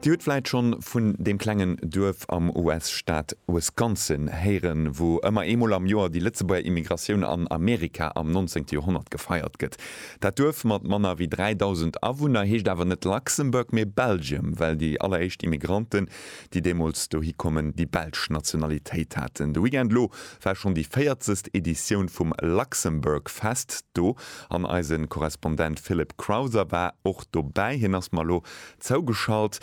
Dir hutt vläit schonn vun deem klengen Duerf am US-Staat Wisconsin héieren, wou ëmmer eemol am Joer déi Lëtzebuerger Immigratioun an Amerika am nonzéngte Joerhonnert gefeiert gëtt. Dat Duerf mat manner wéi 3.000 Awunner heescht awer net Luxembourg, mee Belgium, well déi alleréischt Immigranten, déi deemools dohi kommen, déi belsch Nationalitéit haten. De Weekend elo war schonn déi véierzegst Editioun vum Luxembourgfest do. An eisen Korrespondent Philip Crowther war och dobäi. Hien ass mer elo zougeschalt.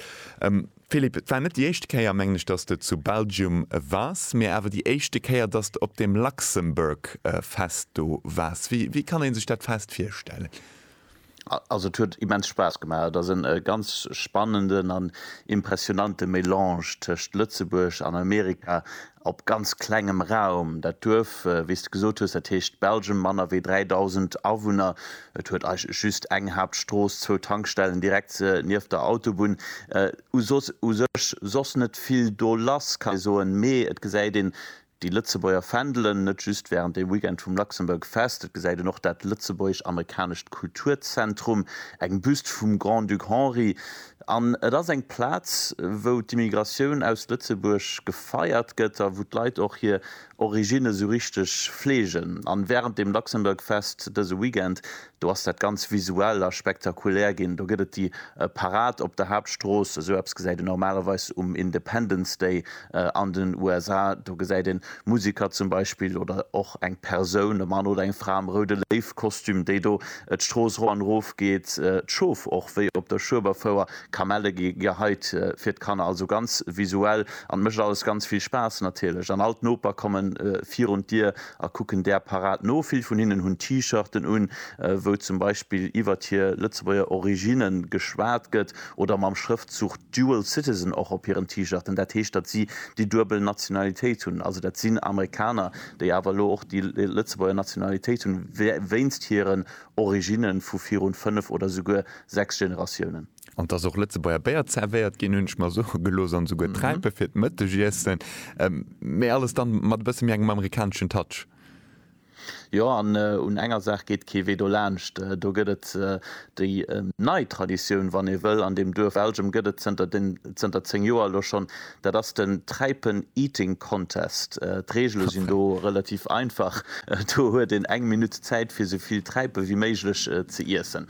Philip, et war net déi éischte Kéier, mengen ech, dass de zu Belgium wars, mee awer déi éischte Kéier, dass de op dem Luxembourg Fest do wars. Wéi kann ee sech dat Fest virstellen? Also et huet immens Spaass gemaach. Et ass en ganz spannenden an impressionante Melange tëscht Lëtzebuerg an Amerika. op ganz klengem Raum. Dat Duerf, wéi s de gesot hues, dat heescht Belgium, manner wéi 3.000 Awunner. Et huet eigentlech just eng Haaptstrooss, zwou Tankstellen direkt nieft der Autobunn. U soss, u sech soss net vill do lass, kann ee soen. Mee et gesäit een déi Lëtzebuerger Fändelen, net just während dem Weekend vum Luxembourg Fest. Et gesäit een och dat lëtzebuergesch-amerikanescht Kulturzentrum, eng Büst vum Grand-Duc Henri, An et ass eng Plaz, wou d'Immigratioun aus Lëtzebuerg gefeiert gëtt a wou d'Leit och hir Originne sou richteg fleegen. An wärend dem Luxembourg Fest dëse Weekend, do ass dat ganz visuell a spektakulär ginn. Do gëtt et déi Parad op der Haaptstrooss, sou eppes gesäit een normalerweis um Independence Day An den USA, do gesäit een Musiker zum Beispill oder och eng Persoun, e Mann oder eng Fra am roude Léiw-Kostüm, déi do d'Strooss ro an erof geet, d'Schof och wéi op der Schueberfouer, Kamelle gi geheit fir d'Kanner, also ganz visuell an mécht alles ganz vill Spaass natierlech. An all d'Noper kommen virun d'Dier a kucken där Parad no. Vill vun hinnen hunn T-Shirten un, wou zum Beispill iwwert hir Lëtzebuerger Originne geschwat gëtt, oder mam Schrëftzug Dual Citizen och op hiren T-Shirten. Dat heescht, datt si déi duebel Nationalitéit hunn. Also dat sinn Amerikaner, déi awer elo och déi Lëtzebuerger Nationalitéit hunn, wéinst hiren Originne vu virun fënnef oder souguer sechs Generatiounen. An dass och Lëtzebuerger Béier zervéiert ginn, hunn ech mer soe gelooss, an esouguer Träipe fir d'Mëttegiessen, mä alles dann mat e bësse méi engem amerikaneschen Touch. Jo, an un enger Saach geet kee Wee dolaanscht, do gëtt et déi nei Traditioun, wann ee wëll, an deem Duerf Elgem gëtt et zënter 10 Joer elo schonn Dat ass den Träipen Eating Contest. D'Reegele sinn do relativ einfach, do huet een eng Minutt Zäit fir sou vill Träipe wéi méiglech ze iessen.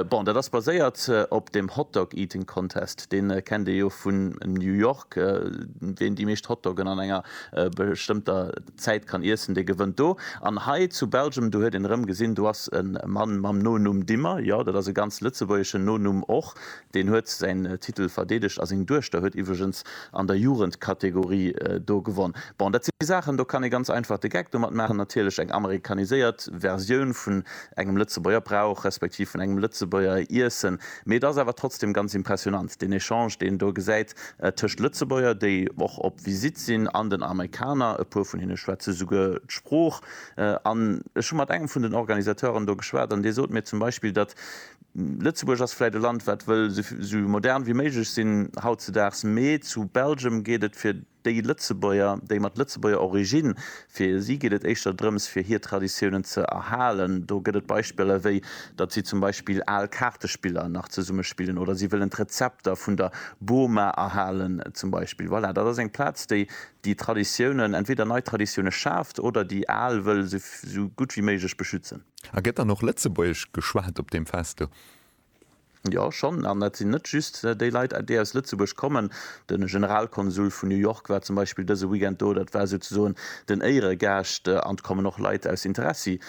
Bon, dat ass baséiert op dem Hot Dog Eating Contest, dee kennt ee jo vun New York. Ween déi meescht Hotdoggen an enger bestëmmter Zäit kann iessen, dee gewënnt do. An hei zu Belgium, do huet een erëm gesinn, do ass e Mann mam Nonumm Dimmer, jo, dat ass e ganz lëtzebuergeschen Nonumm och, Deen huet säin Titel verdeedegt a seng Duechter huet iwwregens an der Jugendkategorie do gewonn. Bon, dat si Saachen, do kann ee ganz einfach de Geck domat maachen. Natierlech eng amerikaniséiert Versioun vun engem Lëtzebuerger Brauch, respektiv vun engem Lëtzebuerger Iessen. Mee et ass awer trotzdem ganz impressionant, deen Echange, deen een do gesäit tëscht Lëtzebuerger, déi och op Visitt sinn, an den Amerikaner. E puer vun hinne schwätze souguer d'Sprooch. An ech hu mat engem vun den Organisateuren do geschwat an dee sot mir zum Beispill, datt Lëtzebuerg ass vläit e Land wat wëll sou modern wéi méiglech sinn hautzedaags, mee zu Belgium geet et fir déi Lëtzebuerger, déi mat Lëtzebuerger Origine, fir si geet et éischter drëms fir hir Traditiounen ze erhalen. Do gëtt et Beispiller wéi datt si zum Beispill al Kaartespiller nach zesumme spillen oder si wëllen d'Rezepter vun der Boma erhalen zum Beispill. Voilà, dat ass eng Plaz déi déi Traditiounen, entweder nei Traditioune schaaft oder déi al wëll sou gutt wéi méiglech beschützen. A gëtt dann och Lëtzebuergesch geschwat op deem Fest do? Jo, schonn. An dat sinn net just déi Leit, déi aus Lëtzebuerg kommen. De Generalkonsul vun New York war zum Beispill dëse Weekend do. Dat war souzesoen den Éieregaascht. An et kommen och Leit aus Interessi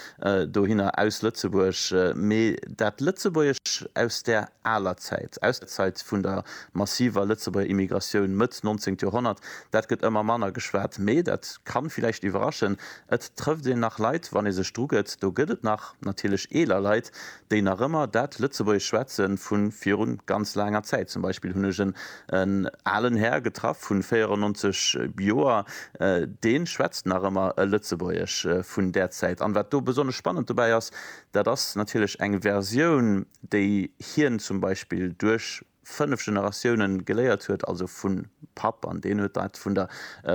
dohinner, aus Lëtzebuerg. Mee dat Lëtzebuergesch aus där aler Zäit, aus der Zäit vun der massiver Lëtzebuerger Immigratioun Mëtt nonzéngt Joerhonnert. Dat gëtt ëmmer manner geschwat, mee dat ka villäicht iwwerraschen, et trëfft een nach Leit, wann ee sech drugëtt. Do gëtt et nach natierlech eeler Leit, déi nach ëmmer dat Lëtzebuergesch schwätze vu viru ganz laanger Zäit. Zum Beispill hunn ech en alen Här getraff vu 94 Joer, dee schwätzt nach ëmmer e Lëtzebuergesch vun där Zäit. An wat do besonnesch spannend dobäi ass, dat ass natierlech eng Versioun, déi hien zum Beispill duerch fënnef Generatiounen geléiert huet, also vun Papp, an deen huet dat vun der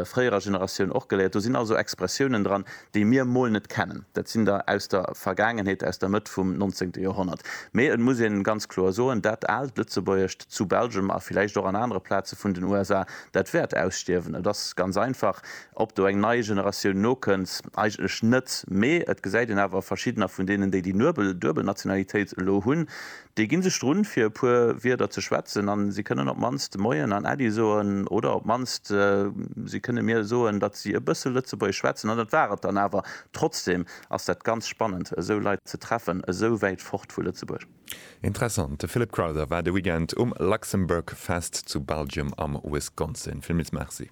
fréierer Generatioun och geléiert. Do sinn also Expressiounen dran, déi mir mol net kennen. Dat sinn der aus der Vergaangenheet, aus der Mëtt vum nonzéngte Joerhonnert. Mee et muss een ganz kloer soen, dat aalt Lëtzebuergescht zu Belgem, a villäicht och an anere Plaze vun den USA, dat wäert ausstierwen. Et ass ganz einfach, Ob do eng nei Generatioun nokënnt, eigentlech net, mee et gesäit een awer, verschiddener vun deenen, déi déi nuebel, duebel Nationalitéit elo hunn, déi ginn sech drun, fir e puer Wierder ze schwätzen an si kënnen op d'mannst Moien an Äddi soen oder op d'mannst si kënne mir soen, datt si e bësse Lëtzebuergesch schwätzen. An dat war et dann awer. Trotzdem ass dat ganz spannend, esou Leit ze treffen, esou wäit fort vu Lëtzebuerg. Interessant, de Philip Crowther war de Weekend um Luxembourg Fest zu Belgium am Wisconsin. Villmils Merci.